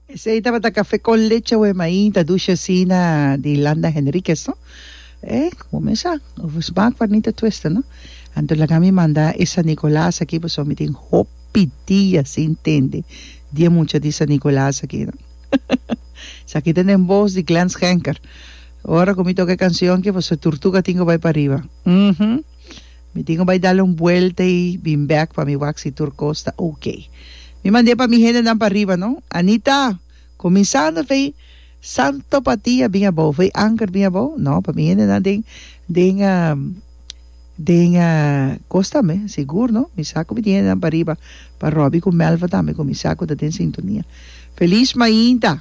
Esei tabata café con leche ue maí ta dushi asina di Landa Henriquez no eh bo mes sa bo smaak pa Nita Twista no anto laga mi manda e San Nicolas aki pasobra mi tin hopi dia sin tende dia mucha di San Nicolas aki no esaki ta den voz di Glen Schenker ora cu mi toca e cancion aki pasobra Turtuga tin cu bay pariba uhmm. Mi tin cu bay dal un buelta y bin bek pa mi wak si tur cos ta ok. Mi mand'e pa mi hendenan pa riba, no? Anita! Cuminsando vey, Santo pa ti a bin abao, vey anker bin abao? No, pa mi hendenan den, den, den cos tambe, sigur, no? Mi sa cu mi tin hendenan pa riba, pa Robbie cu Melva tambe, cu mi sa cu ta den sintonia. Feliz mainta!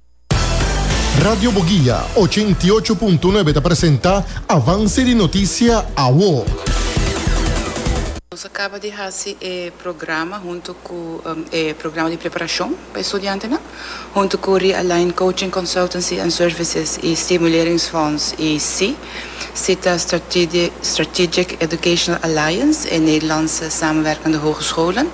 Radio Boguia, ochenta i ocho punto nuebe ta presenta avanse di notisia awo. Nos a caba di haci e programa hunto cu e programa di preparacion pa e studiantenan, hunto cu Realign Coaching Consultancy and Services y Stimuleringsfonds y si, si ta Strategic Educational Alliance, e Nederlandse Samenwerkende Hogescholen.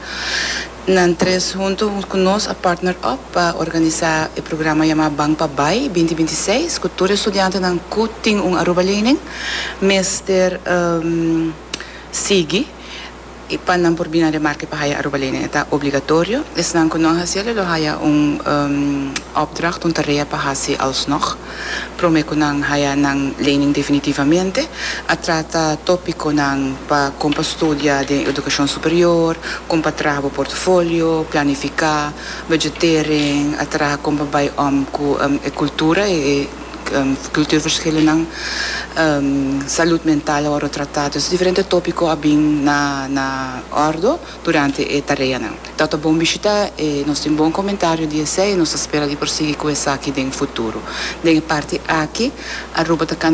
Nan tres huntu ku nos a partner up pa organisá e programa yamá Ban pa Bai binti binti seis ku tur e studiantenan ku tin un Aruba lening mester sigui pa nan por bini na Remarque pa haya Aruba lening. E ta obligatorio. Esnan ku no a hasiel e lo haya un opdracht, un tarea pa hasi alsnog. Prome cu nan haya nan lening definitivamente, a trata topiconan pa con pa studia den educacion superior, con pa traha bo portfolio, planifica, budget tering, a traha con pa bay om cu e cultura, e cultuurverschillennan, salud mental a worde trata. Entonces diferente topico a bin na ordo. durante e tareanan. Ta ta bon bishita e nos tin bon komentario di esei i nos ta spera di por sigui ku esaki den futuro. Den e parti aki Aruba ta kana